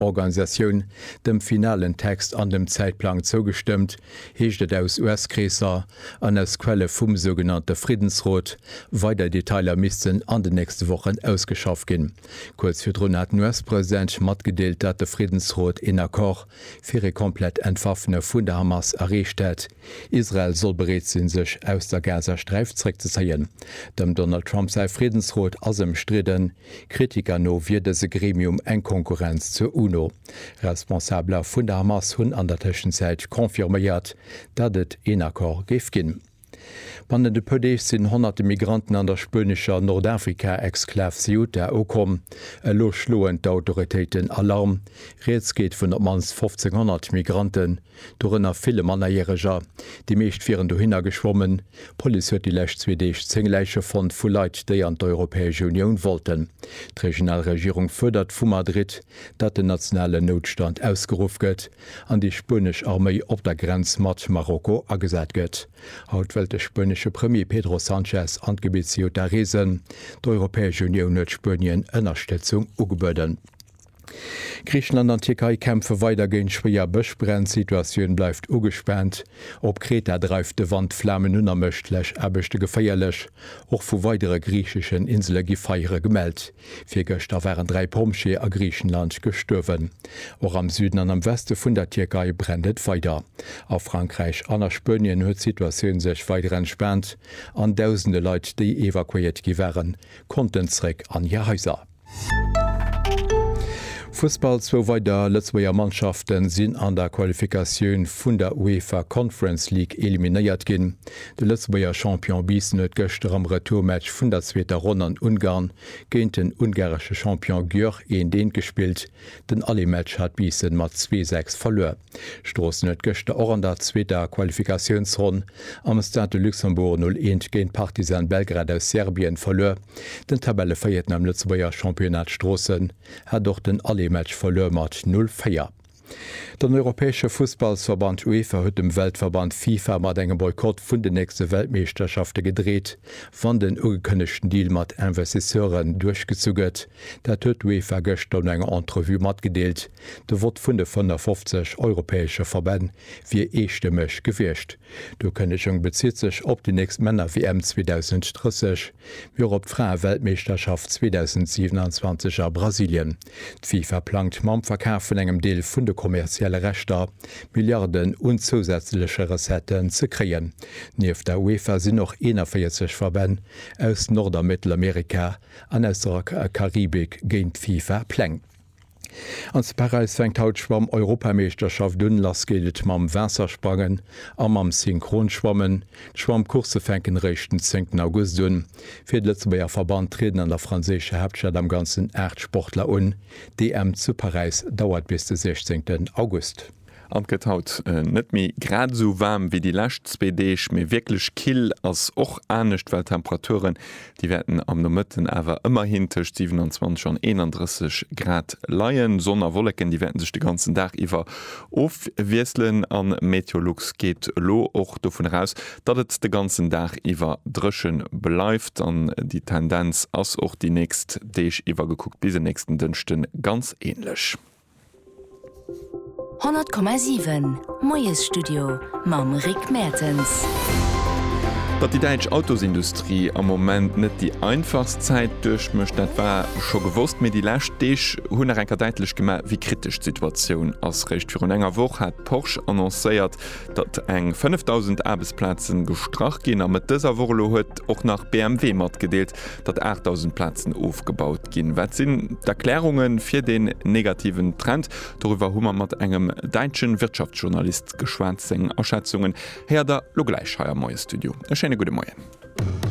Organisatioun dem finalen Text an dem Zäitplang zougestëmmt, heescht et aus US-Kreesser an aus Quelle vum sougenannte Friddensrot. Weider Detailer missten an den nächste Wochen ausgeschafft ginn. Kuerz virdrun hat den US-President matgedeelt, datt de Friddensrot een Accord fir ee komplett Entwaffne vun der Hamas erreecht hätt. Israel soll bereet sinn, sech aus der Gazasträif zréckzezéien. Dem Donald Trump säi Friddensrot ass ëmstridden. Kritiker no wier dëse Gremium eng Konkurrenz zur UNO. Responsabeler vun der Hamas hunn an der Tëschenzäit confirméiert, datt et een Accord géif ginn. Bannent e puer Deeg sinn honnerte Migranten an der spuenescher Nordafrika-Exklav Ceuta ukomm. Elo schloen d'Autoritéiten Alarm. Rieds geet vun op d'mannst 1.500 Migranten. Dorënner ville Mannerjäreger, déi meescht wieren dohinner geschwommen. D'Police huet déi lescht zwee Deeg zéng Läiche fonnt vu Leit, déi an d'Europäesch Unioun wollten. D'regional Regierung fuerdert vu Madrid, datt den nationalen Noutstand ausgeruff gëtt an déi spuenesch Arméi op der Grenz mat Marokko agesat gëtt. Haut wëllt de spuenesche Premier Pedro Sanchez an d'Gebitt Ceuta reesen. D'Europäesch Unioun huet Spuenien Ënnerstëtzung ugebueden. Griichenland an Tierkei kämpfe weider géint schwéier Bëschbränn, d'Situatioun bleift ugespaant. Op Kreta dreift de Wand Flamen un a mécht d'Läschaarbechte geféierlech. Och vu weidere griicheschen Insele gi Feiere gemellt. Virgëschter waren dräi Pompjeeë a Griichenland gestuerwen. Och am Süden an am Weste vun der Tierkei brennt et weider. A Frankräich an a Spuenien huet d'Situatioun sech weider entspaant an dausende Leit, déi evakuéiert gi waren, konnten zeréck an hir Haiser. Fussball, Zwou weider Lëtzebuerger Mannschafte sinn an der Qualifikatioun vun der UEFA Conference League eliminéiert ginn. De Lëtzebuerger Champion Biissen huet gëschter am Retourmatch vun der zweeter Ronn an Ungarn géint den ungaresche Champion Györ Endén gespillt. Den Allé-Match hat Biissen mat zwee Säcks verluer. Stroossen huet gëschter och an der zweeter Qualifikatiounsronn am Stade de Luxembourg 0, 1 géint Partizan Belgrad aus Serbien verluer. Den Tabellevëierten am Lëtzebuerger Championnat Stroossen hat och den Aller-Match verluer mat 0, 4. Den europäesche Fussballsverband UEFA huet dem Weltverband FIFA mat engem Boykott vun den nächste Weltmeeschterschafte gedreet, wann den ugekënnegten Deal mat Investisseuren duerchgezu gëtt. Dat huet d'UEFA gëschter no enger Entrevue matgedeelt. De Vott vun de 55 europäesche Verbänn wier eestëmmeg gewiescht. D'Ukënnegung bezitt sech op déi nächst Männer-WM 2030, mee och op d'Fraeweltmeeschterschaft 2027 a Brasilien. D'FIFA plangt mam Verkaf vun engem Deel vun de kommerzielle Rechter Milliarden un zousätzleche Recetten ze kréien. Nieft der UEFA sinn och 41 Verbänn aus Nord a Mëttelamerika an aus der Karibik géint d'FIFA-Pläng. An zu Paräis fänkt haut d'Schwamm-Europameeschterschaft un. Lass geet et mam Waassersprangen a mam Synchronschwammen. D'Schwammcoursse fänken eréischt den 10 August un. Fir de Lëtzebuerger Verband trieden an der franséischer Haaptstad am Ganzen 8 Sportler un. D'EM zu Paräis dauert bis de 16 August. An 't gëtt haut net méi grad esou waarm wéi déi lescht zwee Deeg, mee wierklech kill ass och anescht, well d'Temperaturen, déi wäerten am Nomëtten awer ëmmerhin tëscht 27 an 31 Grad leien. Sonn a Wolleken, déi wäerte sech de ganzen Dag iwwer ofwiesselen a Meteolux geet elo och dovun eraus, datt et de ganzen Dag iwwer dréche bleift an déi Tendenz ass och déi nächst Deeg iwwer gekuckt bis en nächsten Dënschde ganz änlech. 100,7 Moiesstudio mam Rick Mertens. Datt déi däitsch Autosindustrie am Moment net déi einfachst Zäit duerchmécht, dat war scho gewosst, mee déi lescht Deeg hunn nach eng Kéier däitlech gemaach, wéi kritesch d'Situatioun ass. Réischt virun enger Woch hat Porsche annoncéiert, datt eng 5.000 Aarbechtsplazen gestrach ginn a Mëtt dëser Woch elo huet och nach BMW matgedeelt, datt 8.000 Plazen ofgebaut Ginn. Wat sinn d'Erklärunge fir deen negativen Trend? Doriwwer hu mer mat engem däitsche Wirtschaftsjournalist geschwat. Seng Aschätzungen héiert der lo gläich hei am Moie Studio. E schéine gudde Moien.